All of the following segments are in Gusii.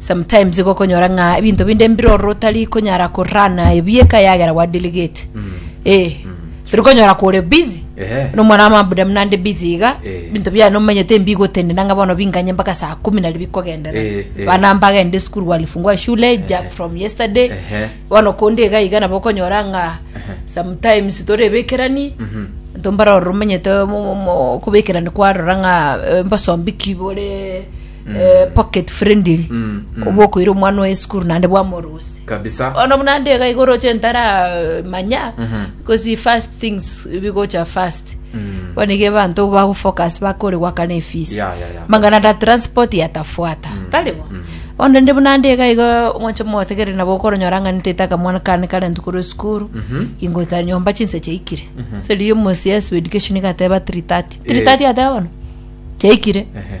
Sometimes igokonyora ng'a ebinto binde mbiroro otari konyara korana ebieka yagera gwa delegate eh turi konyora kore busy Ehe. nomwana amabuda mnande busy iga Eh. binto bia nomanyete mbigotende nanga bono binganye mpaka saa kumi nari bikogendera Eh, eh. bana mbagende school walifungua shule ja from yesterday Ehe. bono konde iga iga nabo okonyora ng'a sometimes torebekerani Mhm. ntombaroro omanyete mo- mo- mo- kobekerani kwarora ng'a eh, mbosombi kibore eh, pocket friendly obo okoira omwana oye esukuru naende bwamorose kabisa ono buna ndega igoroche ntara eh, manya because fast things bigocha fast Mm. bonige bantu bagufocus bakore gwakana efisi Ya, ya, ya, mangana da transport yatafuata taribo onde ndi buna ndega iga omoche motegere nabo okoronyora ng'a ntetaka mwana kane kare ntukuru esukuru ingoika nyomba chinse chaikire seri omosi yes education igateba 330 330 ateba bono chaikire Ehe.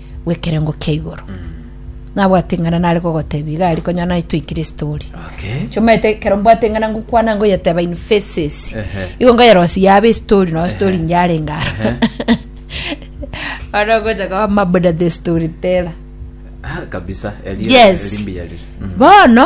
bw'ekerengo kia igoro. Nabwate ing'ana nare kogotebia iga aria konyora nare twaikire story. Okay. Chomete ekero mbwate ing'ana ngokwana ngoyeteba in faces. Ehe. Igo ngoyerosia yabe estory no story nyarenga aro. Aro ogocha koba mabuda the storyteller. Ah, kabisa. Eria- Yes. erimbi yarire. Mhm. Bono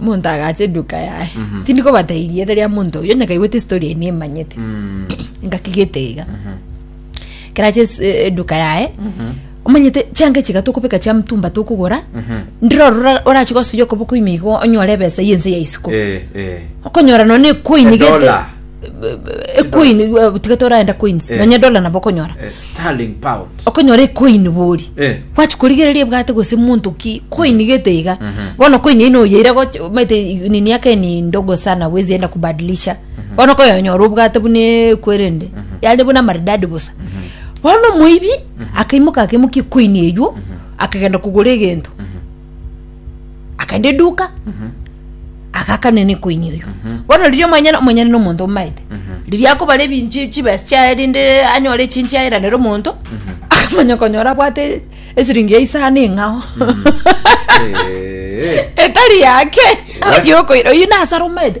omonto agacha eduka yaye tindi kobatebia erieta ria omonto oyo onye kaigwete esitori eye nemanyete Mm. ngakigete iga kerache es- eh, eduka yaye omanyete chianga echiga tokobeka chia mtumba tokogora Mhm. ndire orora orache gosuya okoboko ime igo onyore ebesa yense ya isiko Eh, eh. okonyora nonye ekoini gete Edola. ecoin tiga toraenda coins Eh. nonya dola nabo okonyora Eh, sterling pound okonyora ecoin bori Eh. gwachi korigereria ebwate gose monto ki coin gete iga Mhm. bono coin ino oyeira goch- omanyete i- nini yake ni ndogo sana wezi enda kubadilisha bono okoyonyora obwate buna ekwerende yare buna maridadi bosa bono omoibi akaimoka akaimokia ecoin eywo akagenda kogora egento akaenda eduka agakana niko ini oyo bono riria omonyene omonyene na omonto omaete riria akobara ebinchi chibesa chiaye rinde anyore echinchi aeranere omonto akamanya konyora abwate esiringi ya isano eng'ao Eh, etari yake Iwe? oyokoira oyi nasara omaete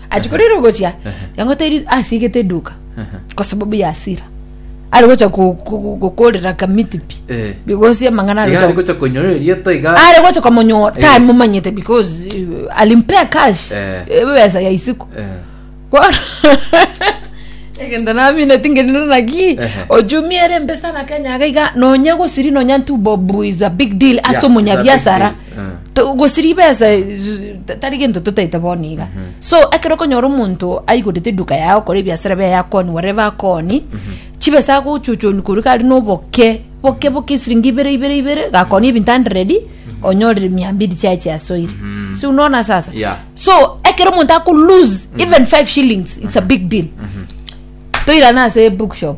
achikorire ogochia yang'oteiri asiegete eduka kwa sababu ya asira ari gocha ku- ku- gukorera kamiti pi Eh. bigosi amang'ana ari Iga gocha- arikocha konyorera erieta iga ari gocha komonyora Eh. tamomanyete because uh, alimpea cash Eh. ebesa ya isiko Eh, Kwa- egento namine tingenino naki Ehe. ojumiere embesa na kenya gaiga nonya gosiri nonya ntubobu is a big deal ase Yeah, omonyabiasara To- gose ribesa eh, z- ta- tari gento totaete bono iga so ekero okonyora omonto aigorete eduka yao kore ebiasara biaye akoni whatever akoni chibesa agochochoni korwa kare noboke boke boke esiringi ibere ibere ibere gakoni ebinto hundred onyorire mia mbiri chiaye chiasoire si unaona sasa Yeah. so ekero omonto ako lose even five shillings it's a big deal toirana ase bookshop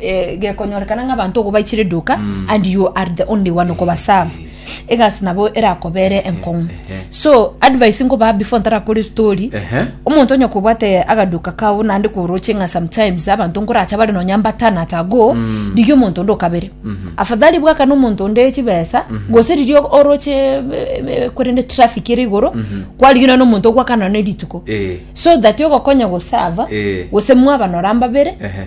eh, gekonyorekana ng'a abanto ogo baichire eduka and you are the only one okobaserve egasi nabo erakobere enkong'u so advice nkobaa before ntarakore story Ehe. omonto onye kobwate agaduka kao naende koroche ng'a sometimes abanto nkoracha bare nonya mbatana at ago rigia omonto onde okabere afadhali bwakane omonto onde chibesa gose riria oroche eh, eh, korende traffic ere igoro kwarigia nonye omonto ogwakana nonye rituko Eh. so that ogokonya gosava Eh. gose mwabanora mbabere Ehe.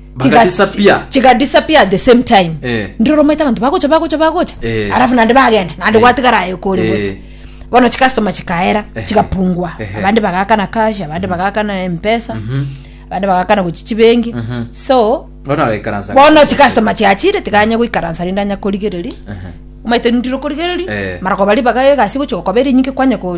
Bagadisappear. chiga disappear at the same time Eh. ndire romaite abanto bagocha bagocha bagocha Eh. arafu nande bagenda nande Eh. gwatigara aye kore Eh. gose bono chikastoma chikaera Ehe. chigapungwa Ehe. abande bagakana cash abande bagakana mpesa Mhm. abande bagakana gochi chibengi Mhm. so Bono agaikaransa. bono chikastoma chiachire tiganya goikaransa rinde anya korigereria Ehe. omaite ndire korigereria Eh. mara kobari bagaye egasi gochi gokobera enyinge kwanya ko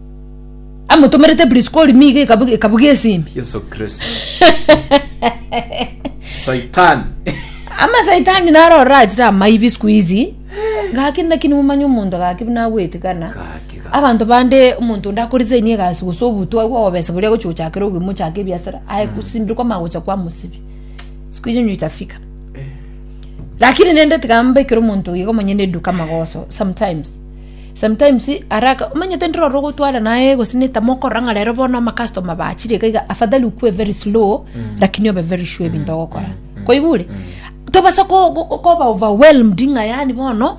amotomerete Priskori nigo ekabu- ekabugia esimi Yesu Kristo. Saitani. amasaitani naro orachire amaibi siku hizi gaki naki nimomanya omonto gaki buna agwetikana Gaki, gaki. abanto bande omonto onde akorisainie egasi gose obutwa agwo obesa boria agochi gochakera obwe mochaka ebiasara aye gosimbire kwa magocha kwa mosibi siku hiyo nyo itafika lakini nende tiga mbekere omonto igo monyene eduka magoso sometimes Sometimes haraka omanyete ndire ore ogotwara naye gose neta mokorora ng'a rero bono amacustomer bachire iga iga afadhali okwe very slow lakini obe very sure ebinto ogokora koigure tobasa ko- ko- koba overwhelmed ng'a yani bono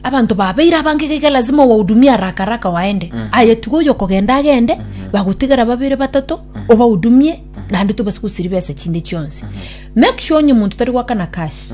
abanto babeire abange iga iga lazima owahudumie haraka haraka waende aye tiga oyo okogenda agende bagotigara babere batato obahudumie naende tobasa gosiria besa chinde chionsi make sure onye omonto tari goakana cash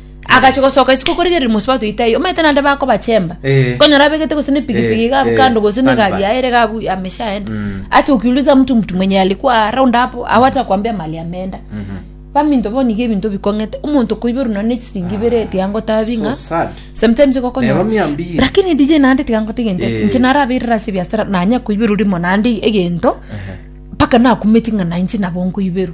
agachia gosoka isiko korigereria mosubati oito aye omanyete naende bakobachemba Eh. konyora abegete gose nepigipigi Eh, gabu eh, kando gose standby. negari yaye ere gabu ameshaenda Mm. acha ukiuliza mtu mtu mwenye alikuwa round hapo au hata kuambia mali ameenda Mhm. baminto boniga ebinto bikong'ete omonto koiberu nonye ne chisiringi ibere eti angotabi So ng'a sad. sometimes Neba igokonyora miambie. lakini dj naende tigangote egento Eh. inche narabeirera ase ebiasara nanya koiberu rimo naende egento Ehe. mpaka nakumeti ng'a nainche nabo nkoiberu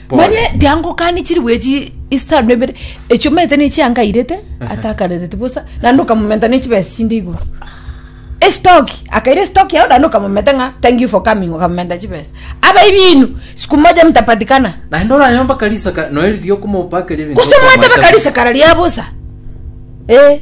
manye tiangokani chiribu echi isano na ibere echio omanyete ne chiankairete atakarereti bosa naende okamomenta ne chibesa chinde igoro estoki akaira estoki yao naende okamomenta ng'a thank you for coming okamomenta chibesa abaibi inu siku moja mtapatikana naende oranyore mpaka risaka noe riria okomopakeria ebinto gose omanyete okomoetanisa. baka risekara ria bosa eh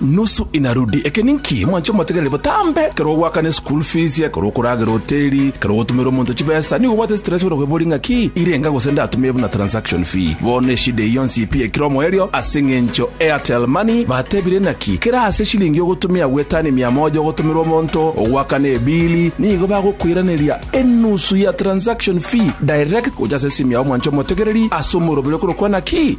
Nusu inarudi. Eke ninki? Mwanche omotegereri botambe, ekero ogoakana eschool fees, ekero okoragera hoteli, ekero ogotumera omonto chibesa, nigo obwate stress buna kweboria ng'a ki irenga gose ndatumie buna transaction fee. Bono eshida eye yonsi pi ekire omoerio ase eng'encho Airtel Money batebire naki kera ase eshilingi ogotumia gwetani mia moja ogotumera omonto ogoakana ebili nigo bagokoiraneria enusu ya transaction fee direct gocha ase esimu yao mwanche omotegereri ase omoroberi okorokwa naki